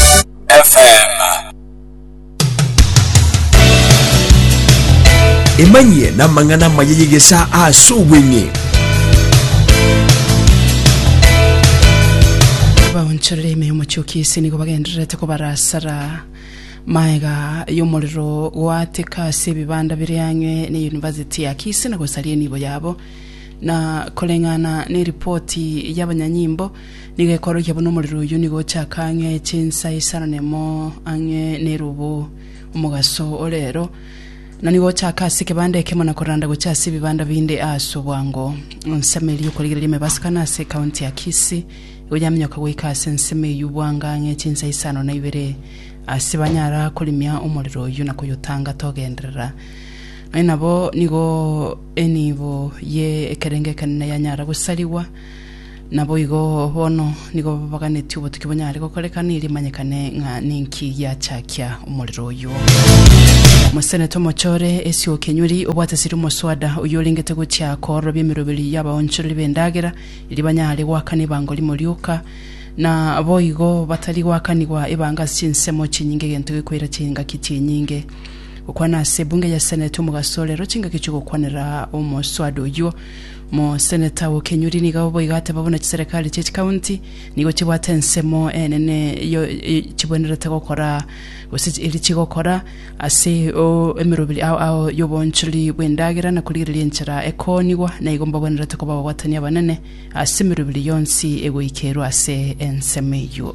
FM. Emanyie n'amang'ana amaya y'egesaa ase obweng'e. abaonchorere ime y'omochoki ase nigo bagendererete kobarasara maega y'omorero goateka ase ebibanda bire ang'e ne yunivasiti ya kisi na gosaria enibo yabo na koreng'ana ne ripoti y'abanyanyimbo Nigo ekorokia buna omorero oyio nigo ochaka ang'e chinsa isaranemo ang'e nerobo omogaso orero, na nigo ochaka ase ekebanda ekemo na koranda gochia ase ebibanda binde aase obwango. Ensemo eria y'okorigereria emebasakano ase ekaunti ya Kisii nigo yamenyoka goika ase ensemo eyio obwanga ang'e chinsa isano na ibere ase banyara korimia omorero oyio na koyotanga togenderera. Nonya nabo nigo enibo ye ekerenge ekenene yanyara gosarigwa. Naboigo bono nigo babaganetie obotuki bonyare gokorekana eri manyekane ng'a ninki giachakia omorero oyo. Mosenete omochore esi okenyuri obwate siri omoswada oyio orengete gochia koororobia emeroberi y'abaonchoreri b'endagera eri banyare goakana ebango rimo rioka na boigo batari goakanigwa ebanga ase chinsemo chinyinge egento gekoira chingaki chinyinge gokwana ase ebunge ya seneti omogaso orero chingaki chi'ogokwanera omoswada oyio Moseneta o Kenyuri nigo boigo ateba buna chiserekari chie chikaunti nigo chibwate ensemo enene yo chibwenerete gokora gose eri chigokora ase o emeroberi ao ao y'obonchori bw'endagera na korigereria enchera ekoonigwa na igo mbabwenerete koba ababwatani abanene ase emeroberi yonsi egoikerwa ase ensemo eyio.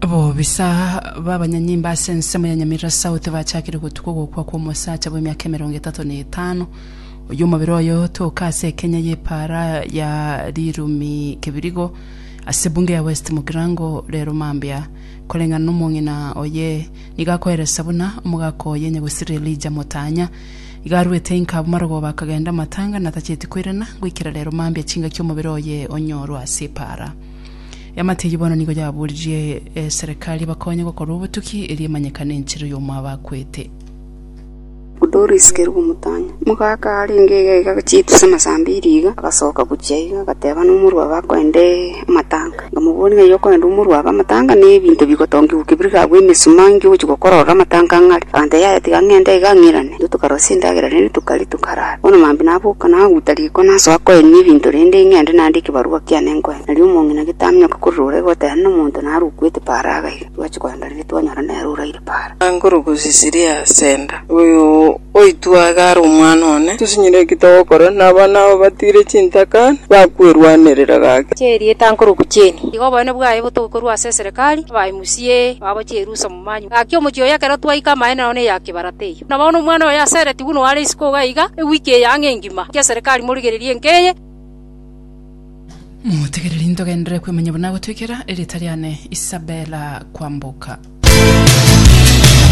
Abobisa b'abanyanyimba ase ensemo ya Nyamira South bachakire gotuka ogokwa kw'omosacha bw'emiaka emerongo etato na etano oyio omobere oye otoka ase ekenya y'epaara ya Rirumi Kibirigo ase ebunge ya West Mugirango rero mambia koreng'ana n'omong'ina oye nigo akoeresa buna omogaka oye nyagusiri Elijah Motanya iga arwete inka abwo marogoba akagenda amatanga natacheti koirana goikera rero mambia chingaki omobere oye onyorwe ase epaara Eamate eyio bono nigo yaboririe eserekari ebakonye gokorwa obotuki, erio emanyekane enchera y'omo abakwete. Doris Kerubo Mutanya, omogaka arenge iga iga chitu chisama saa mbiri iga, agasoka gochia iga agateba nomorwabe akoende amatanga. Nkamobori ng'a eyio okoenda omorwabe amatanga ne ebinto bigotongigwa kebiriri agwo emesuma nki ogochi gokora ororo amatanga ang'are. Agantebia yaya tiga ng'ende iga ng'irane. Intwe tokarosia endagera rende tokaria tokarara. Bono mambia naboka naguta riko nasoa koenia ebinto rende ng'ende naandike ebarua kiane nkoe. Erio omong'ina gete aminyoke korwa ore goteba nomonto narukwe eteparo agaiga, twache kogenda riria twanyora nere oraire para. Nkoruga osisiri ase enda. Oyo oitwe iga are omwana one. Tosinyire eki togokora, na abana abo batiire chintaka, bakwerwanerera gaki. Ch'erieta nkoruga chieni. Iga oboene bwaye botoke korwa ase eserekari, abae musie, babo ch'erusa momanywe. Gaki omochie oyo ekero twaika amaene nao ne ya kibarata eyo. Na bono omwana oyo asereti buna o are isiko iga, ewiki eye ang'e engima, gaki eserekari morigererie enka eye. Motegereri ntogenderere kwemanya buna gotwekera erieta riane Isabella kwamboka.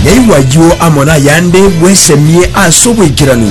Naigwa ayio amo nayande bwesemie ase oboikeranu.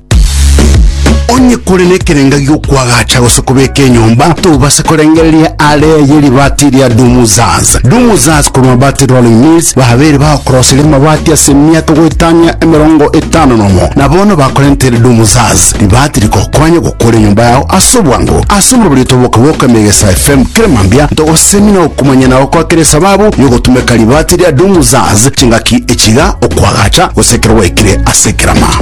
Onye kore nekerenga gi'okwagacha gose kobeka enyomba, tobase korengereria aare ye ribaati ria Dumuzaz. Dumuzaz korwa Mabati Rolling Mills babeire bagokoroseria amabati ase emiaka goetania emerongo etano nomo, na bono bakorentere Dumuzaz ribaati rigokonye gokora enyomba yao ase obwango. Ase oborobori otoboke bw'oka Emegesa FM kera mambia, ntogosemi na okomanya nao kwakere esababu y'ogotumeka ribaati ria Dumuzaz chingaki echiga, okwagacha gose ekero gwaikire ase ekerama.